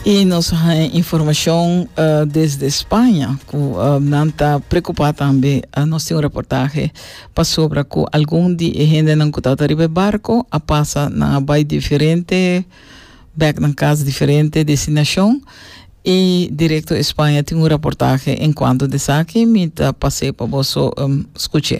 I nos haña informashon desde Spaña ku nan ta preokupá tambe. Nos tin un reportahe pasobra ku algun di e hendenan ku tabata riba e barko a pasa nan a bai diferente bèk nan kas, diferente destinashon i Directo España tin un reportahe enkuanto di esaki. Mi ta pas'é pa boso skuch'é.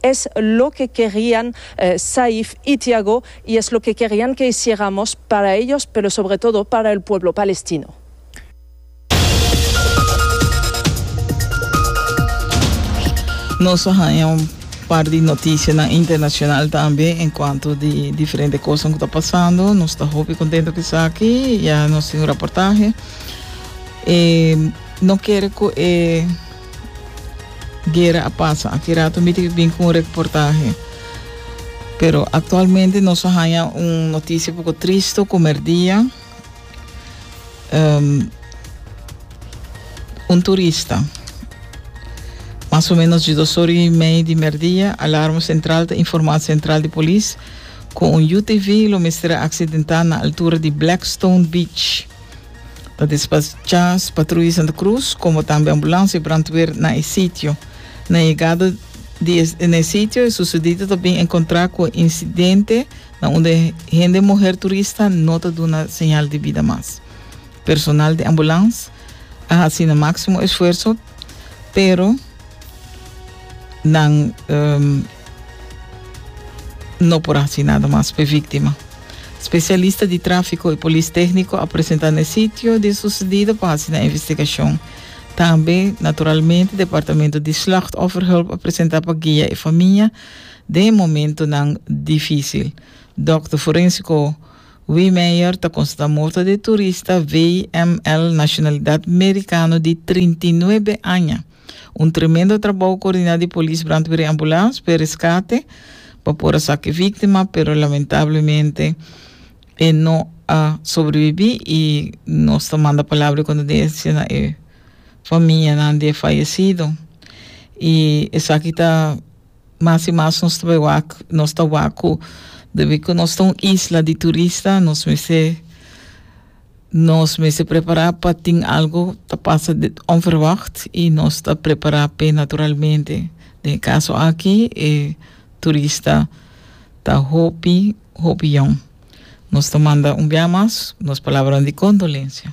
Es loke kerian Saif y Tiago y es loke kerian ke hiciéramos para ellos pero sobre todo para el pueblo palestino. Nos a haña un par di noticianan internacional tambe en cuanto di diferente cosanan cu ta pasando. Nos ta hopi contento cu esaki. Ya nos tin un raportahe. E no kere cu e. Guera a pasa. Aki rato mi tin bin cu un reportahe. Pero actualmente nos a haña un noticia poco tristo, comer dia. Um, un turista. Mas o menos de dos horas y media de merdia, alarma central te informa central de polis cu un UTV lo mestra accidenta na altura de Blackstone Beach. Ta despachá patruya Santa Cruz komo tambe ambulansia brandweer na e sitio. Na e yegada di e na e sitio e susedido ta bin enkontrá ku e insidente na unda e hende muher turista no ta duna señal di bida mas. Personal di ambulans a hasi nan máksimo esfuerso pero nan No por haci nada mas p'e víctima. Specialista di tráfico y polis técnico a presenta n'e sitio di e sucedido pa haci nan investigacion. Tambe, naturalmente, departamento di Slachtofferhulp a presenta pa guia e famia den e momentonan difícil. Dokter forénsico Wiemeyer ta constata morto di e turista VML, nacionalidad mericano di trinta i nuebe aña. Un tremendo trabou coordiná di polis, brandweer i ambulans p'e rescate pa por a sa cu e víctima, pero lamentablemente e no a sobreviví i nos ta manda palabra di condolencia na e famianan di e fayecido. I esaki ta mas i mas nos ta bai wak, nos ta wak cu debi cu nos ta un isla di turista nos mester. Nos mester prepará pa tin algu ta pasa onverwagt i nos ta prepará p'e naturalmente. Den e kaso aki e turista ta hopi, hopi yon. Nos ta manda un bia mas nos palabranan di kondolensia.